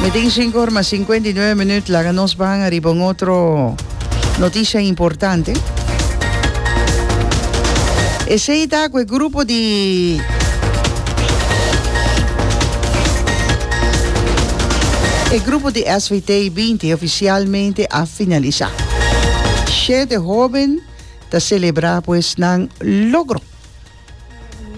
Mi tin cinco ora mas cincuenta y nueve minuut. Laga nos ban arriba un otro noticia importante. Esei ta cu e grupo di E grupo di SVT 20 oficialmente a finalisa. Siete hoben ta celebra pues nan logro.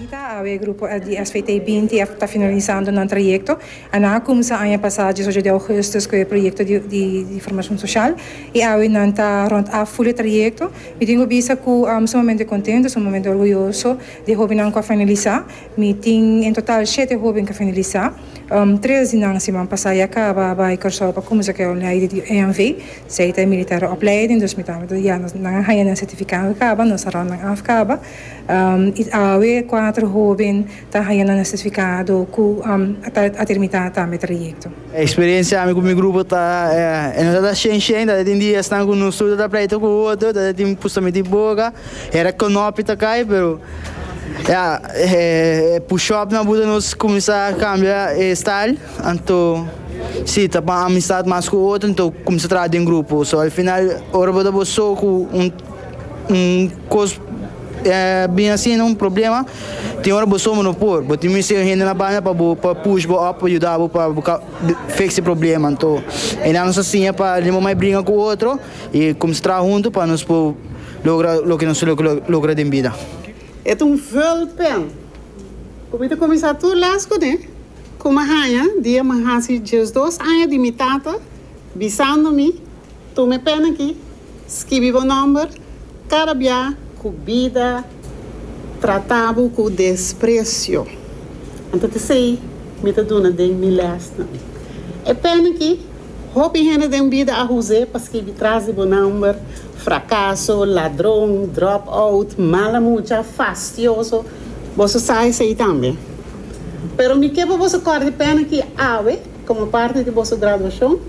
Unita, awe grupo di SVT binti a ta finalisando nan trayekto. Nan a kumsa aña pasá djes ocho di ougùstùs ku e proyekto di formashon soshal i awe nan ta rònt af ful e trayekto. Mi tin ku bisa ku sumamente kontentu, sumamente orguyoso di e hóbennan ku a finalisá. Mi tin en total shete hóben ku a finalisá. Tres di nan siman pasá ya kaba bai Kòrsou pa kumsa ku e opleiding di EMV, esei ta e militèr opleiding, dus mi ta nan a haña nan sertifikado kaba, nos a rònt nan af kaba. Awe e kuater hoben ta haña nan sertifikado ku a terminá tambe trayekto. E eksperiensia ami ku mi grupo ta e nos a ta shen shen tabata tin diasnan ku nos tur ta ta pleito ku otro tabata tin pusta miti boka hera konopi ta kai pero ya e pushopnan a buta nos kuminsá kambia e style anto si ta pa amistad mas ku otro anto kuminsá traha den grupo so al final ora bo ta bo so ku un. un cos bin asina un problema tin ora bo somo no por bo tin mester hende na banda pa bo pa push bo up pa yuda bo pa bo fix e problema anto e nan nos a siña pa limon mai bringa ku otro i kumsa traha huntu pa nos por logra loke nos lo logra den bida. E ta un vulpen ku mi ta kuminsá tur lès kuné ku mi a haña dia mi a hasi diesdos aña di mi tata bisando mi. Tuma e pèn aki, skibi bo nòmber. Kada bia ku bida trata bo ku despresio, anto ta esei mi ta duna den mi lèsnan. E pèn aki, hopi hende den bida a hus'é pa skibi tras di bo nòmber, frakaso, ladron, drop out, mala mucha, fastioso, boso sa esei tambe. Pero mi ke pa boso kòrda e pèn aki awe. Komo parti di boso graduashon,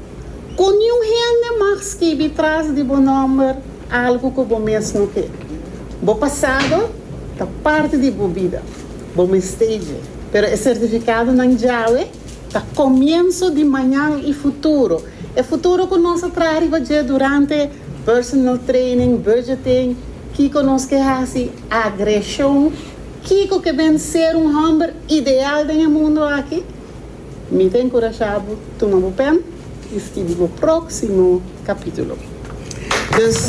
ku niun hende mag skibi tras di bo nòmber algu ku bo mes no ke. Bo pasado ta parti di bo bida. Bo mest'é dje. Pero e sertifikadonan djawe ta komienso di mañan i futuro. E futuro ku nos a traha riba dje durante personal training, budgeting, kiko nos ke hasi, agreshon, kiko ke ben ser un hòmber ideal den e mundu aki. Mi ta enkurashá bo tuma bo pèn i skibi bo próksimo kapítulo. Dus,